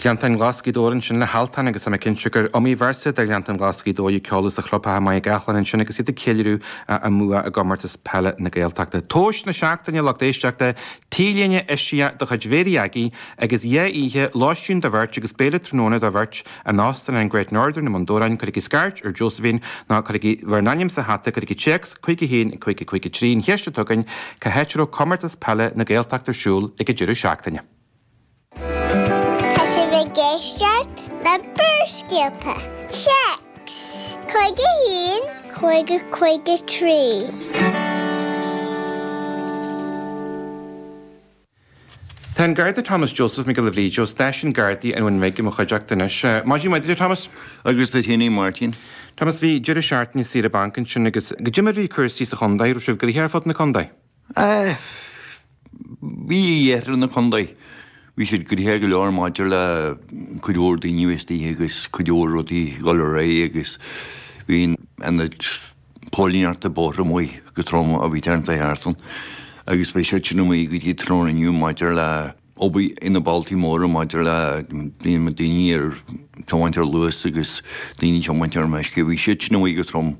Gleanntáin Ghlas Ghaoth Dobhair ansin le hAltan agus tá mé cinnte gur iomaí véarsa de Ghleanntáin Ghlas Ghaoth Dobhair a ceoladh sa chlubtheach i Machaire Gathlán ansin agus iad ag ceiliúradh a mbua i gComórtas Peile na Gaeltachta. Tomhas na seachtaine, lucht éisteachta, T-léine eisiach de chuid Mhéirí Aggie agus dhá oíche, lóistín do bheirt agus béile tráthnóna do bheirt in Óstán an Great Northern i mBun Dobhráin, cuirigí scairt ar Josephine nó cuirigí bhur n-ainm sa hata, cuirigí téacs 51553 an cheist atá againn cá háit a raibh Comórtas Peile na Gaeltachta ar siúl ag an deireadh seachtaine. Tá sibh ag éisteacht le Barrscéalta, téacs 51553. Tá an Garda Thomas Joseph Mac Giolla Bhríde ó Stáisiún Gardaí an Bhuna Bhig i mo chuideachta anois. Maidin mhaith duit, a Thomas. Agus duit féin, a Mháirtín. Thomas, bhí deireadh seachtaine saoire bainc ansin agus caidé mar bhí cúrsaí sa chontae, raibh sibh gnoitheach ar fud na contae? Eh, bhí a dheireadh ar na contae. Bhí siad gnoitheach go leor maidir le cuid mhór daoine a bheith istigh agus cuid mhór rudaí ag dul ar aghaidh agus bhí an tAonad Póilíneachta Bóthar amuigh go trom i rith na seachtaine agus beidh siad sin amuigh go dtí tráthnóna inniu maidir le obair ar na bealtaí móra maidir le daoine ar tiomáint ar luas agus daoine tiomáint ar meisce. Bhí siad sin amuigh go trom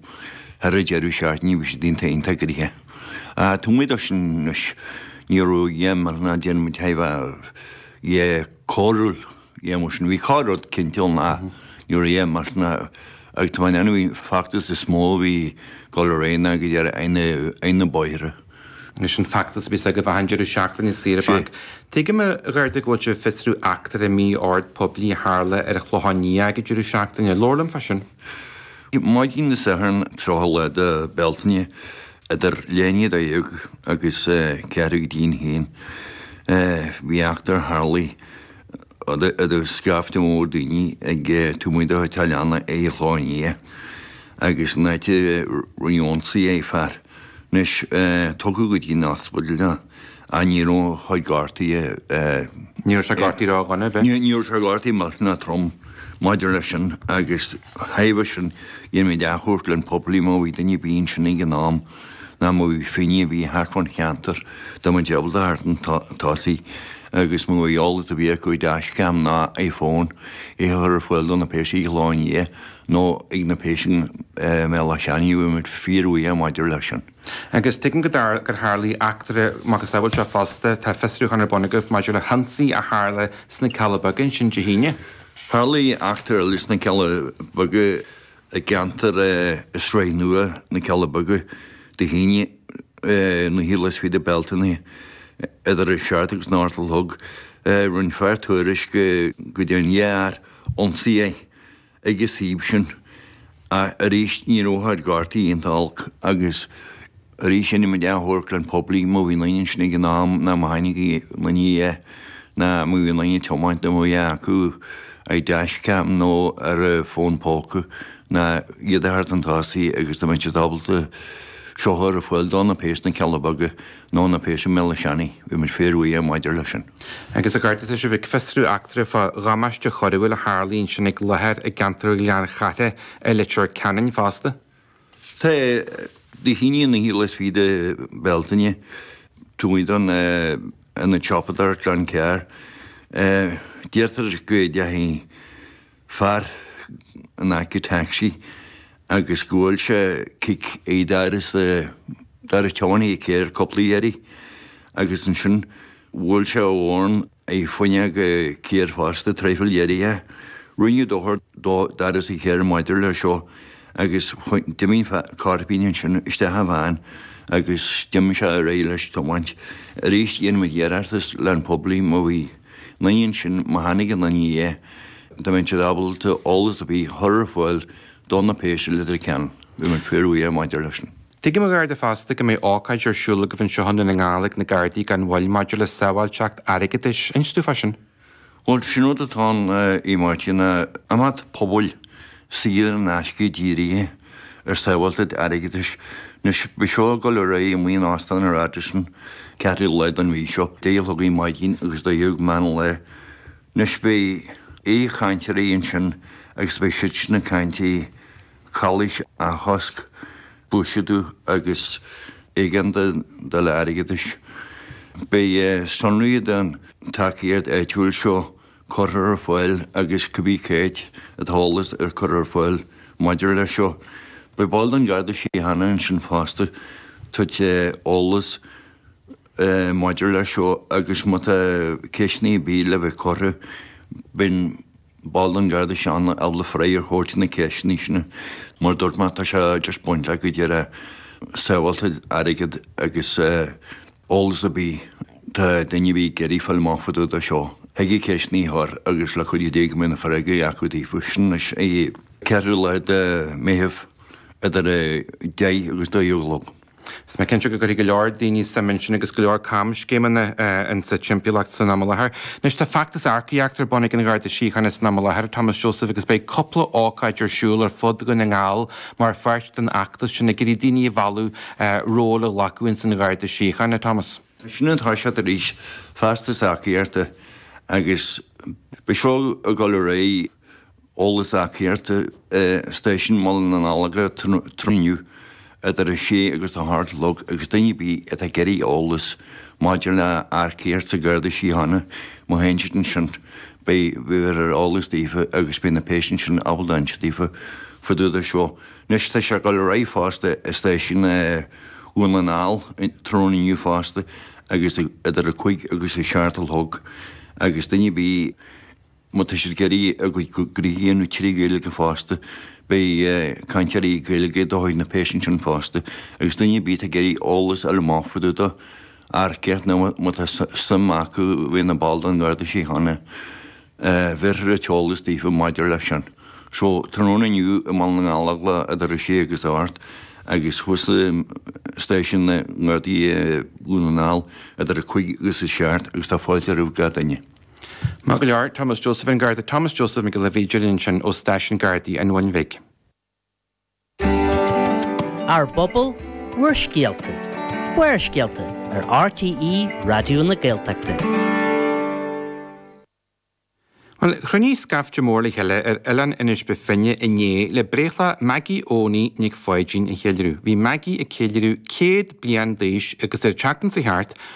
thar an deireadh seachtaine, bhí siad iontach gnoitheach. Taobh amuigh de sin anois, ní raibh a dhath ná Diarmuid ó thaobh, eh, coiriúil. a dhath mar sin. Bhí corr-rud cinnte ann ach ní raibh a dhath mar sin ach tá an bhí feachtas is mó a bhí dul ar aghaidh againn ar na bóithre. Anois an feachtas a bhí i bhfeidhm deireadh seachtaine saoire bainc. Tuigim a Gharda go bhfuil sibh ag fiosrú eachtra mí-ord poiblí a tharla ar an Chlochán Liath ag an deireadh seachtaine. Labhair liom fá sin. Maidin Dé Sathairn tríocha lá de Bealtaine idir leath i ndiaidh a dó dhéag agus ceathrú go dtí'n haon bhí eachtra tharlaigh. idir scaifte mór daoine taobh amuigh de theach leanna ar an Chlochán Liath agus an áit a raibh ionsaí ar fear anois tugadh go dtí an ospidéal ach ní raibh a chuid gortuithe. Ní raibh sé gortaithe raibh duine ar bith. Ní raibh sé gortaithe go holc ná trom maidir leis sin agus ó thaobh sin dhéanfaimid achainí ar an bpobal má bhí duine ar bith ansin ag an am. nó má bhí duine ar bith thart fán cheantar, dá mbeadh ábalta teacht chun tosaigh agus má tá eolas ar bith acu i dash cam nó i fón, é a chur ar fáil do na péas ar an Chlochán Liath nó ag na péas i mBéal Átha Seanaidh, bheadh muid fíorbhuíoch maidir leis sin. Agus tuigim gur tharlaigh eachtra macasamhail seo fosta, tá fiosrúchán ar bun agaibh maidir le hionsaí a tharla sna Cealla Beaga ansin Dé hAoine? Tharlaigh eachtra eile sna Cealla Beaga i gceantar i Sraith Nua na Cealla Beaga do Shíne na hIarla is féidir Bealtaine idir an Searc agus an Fhearthail Thug Roinn Fear tuairisc go dtí an ghearr ionsaí ag an suíomh sin ach arís ní raibh a haghaidh cártaí iontu olc agus Arís dhéanfadh muid iarratas leis an phoiblí má bhí aon duine ansin ag an am nó má chonaic aon duine é, nó má bhí aon duine ag tiomáint dá mbeadh acu ar dashcam nó ar a bhfón póca ná iad a theacht chun tosaigh agus dá mbeadh siad ábalta seo a chur ar fáil do na péas na Cealla Beaga nó na péas i mBéal Átha Seanaidh, bheadh muid fíorbhuíoch maidir leis sin. Agus a Gharda, tá sibh ag fiosrú eachtra fá dhamáiste choiriúil a tharlaigh ansin ag láthair i gceantar Ghleann Chartha i Leitir Ceanainn fosta. Tá, Dé hAoine an naoú lá is fiche de Bhealtaine taobh amuigh den ionad siopadóireachta Glencar. Deirtear go ndeachaigh fear in aice taxi agus go bhuail sé cic ar doras doras tiománaí an chairr cúpla iarraidh agus ansin bhuail sé a dhorn. Ag fuineadh go ciardh fosta, traidhfil dheiridh é. Rinneadh dochar dó d'fhad is a chéir maidir le seo agus d'imigh an cairpín ansin isteach i bhfean agus d'im sé ar aghaidh leis tiomáint. Aríst dhein muid iarratas le an poiblí mo bhí naigh ansin má tháinig an naigh é dá mbeinn siad ábalta eolas a bhí thoir a fáil do na péisteanna litir ceann. Bhí muid fair away maidir leis an. Tuigim, a Gharda fosta, go mbeidh ócáid ar siúl agaibh anseo i nDún na nGall ag na Gardaí gan mhoill maidir le sábháilteacht airgeadais. Inis dúinn fá sin. Bhuel, is é an rud atá ann, a Mháirtín. Imeacht pobail saor in aisce dírithe ar sábháilteacht airgeadais. Anois, beidh seo ag dul ar aghaidh in Óstán an Radisson ceathrú lá den mhí seo, deich a chlog ar maidin agus dó dhéag meán lae. Anois, beidh aoichainteoirí ansin agus beidh siad sin ag caint faoi. chalaois a chosc, buiséadú agus éigeandáil airgeadais. Beidh sonraí den tacaíocht áitiúil seo curtha ar fáil agus cibé cad é an t-eolas atá curtha ar fáil maidir leis seo. Beidh ball den Gharda Síochána ansin fosta ag tabhairt eolas maidir leis seo agus má tá ceisteanna ar bith le bheith curtha, beidh. Ball den Gharda Síochána ábalta freagra a thabhairt na ceisteanna sin. Mar a dúirt mé, tá sé á dtaispeáint le go díreach sábháilteacht airgid agus eolas ar bith atá duine ar bith ag iarraidh fáil amach fá dtaobh de seo. Thig a gceisteanna a chur agus le cuidiú Dé go mbeidh na freagraí acu daofa. Sin anois é. Ceathrú lá de Mheitheamh idir 10 agus 12 a chlog. Is mé cinnte go gcuirfidh go leor daoine suim ansin agus go leor camscéimeanna insa timpeallacht san am i láthair. Anois, tá feachtas earcaíochta ar bun ag an Gharda Síochána san am i láthair, a Thomas Joseph, agus beidh cúpla ócáid ar siúl ar fud Dhún na nGall mar pháirt den fheachtas sin ag iarraidh daoine a mhealladh róil a ghlacadh ins an Gharda Síochána, a Thomas. Tá sin ag toiseacht arís, feachtas earcaíochta, agus beidh seo ag dul ar aghaidh. Eolas earcaíochta Stáisiún Bhaile na nGallóglach tráthnóna inniu idir 6 agus 8 a chlog agus duine ar bith atá ag iarraidh eolas maidir le earcaíocht sa Gharda Síochána, má théann siad ansin beidh bhéarfar eolas daofa agus beidh na péas ansin ábalta insint daofa fá dtaobh de seo. Anois tá sé ag dul ar aghaidh fosta i Stáisiún Dhún na nGall tráthnóna inniu fosta agus idir 5 agus 7 a chlog agus duine ar bith Má tá siad ag iarraidh a gcuid gnoithe a dhéanamh trí Ghaeilge fosta, beidh cainteoirí Gaeilge de chuid na bpéas ansin fosta, agus duine ar bith atá ag iarraidh eolas fá dtaobh de earcaíocht nó má tá suim acu bheith ina mball den Gharda Síochána, bhéarfar an t-eolas daofa maidir leis sin. So, tráthnóna inniu i mBaile na nGallóglach idir a sé agus a hocht agus thuas i Stáisiún na nGardaí i nDún na nGall idir a cúig agus a seacht agus tá fáilte roimh gach duine. Maith go leor. Thomas Joseph, An Garda Thomas Joseph Mac Giolla Bhríde linn ansin ó Stáisiún Gardaí an Bhuin Bhig. Ár bPobal, Bhur Scéalta, Barrscéalta ar RTÉ Raidió na Gaeltachta. Bhuel, chruinnigh scaifte mór le chéile ar Oileán Inis Bó Finne inné le breithlá Maggie Eoghanaí Nic Pháidín a cheiliúradh. Bhí Maggie ag ceiliúradh 100 bliain d'aois agus ar teacht insa teach,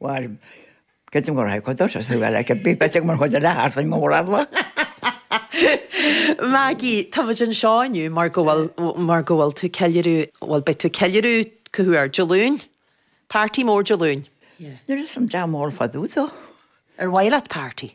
Bhuel, cad é mar atá ag chuid dorais? Bhuel, bheadh an bhíth beag mar chuid eile thart, an mór eile. Maggie, tá muid anseo inniu mar go bhfuil, mar go bhfuil tú ag ceiliúradh, bhuel, beidh tú ag ceiliúradh, cá huair, Dé Luain? Party mór Dé Luain. Níl fhios a'm, dream mór fadú, tá. Ar mhaith leat party?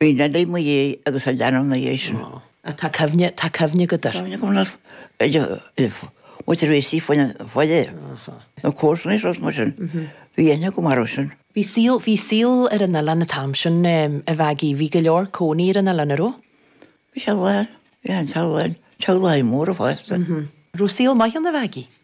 Bhí Nellie i mo dhiaidh agus a leanbh ina dhiaidh sin. Ó. Á, tá cuimhne, tá cuimhne agat air. Cuimhne agam air. Idir, muid ar réití faoin an bhaile. Áhá. Na comharsana is rud mar sin. Bhí aithne agam orthu sin. Bhí saol, bhí saol ar an oileán an t-am sin, em, a Mhaggie, bhí go leor ina gcónaí ar an oileán, a' raibh? Bhí sé lán, bhí an t-oileán lán, teaghlaigh mhóra fosta. M-hm. Raibh saol maith ann a Mhaggie?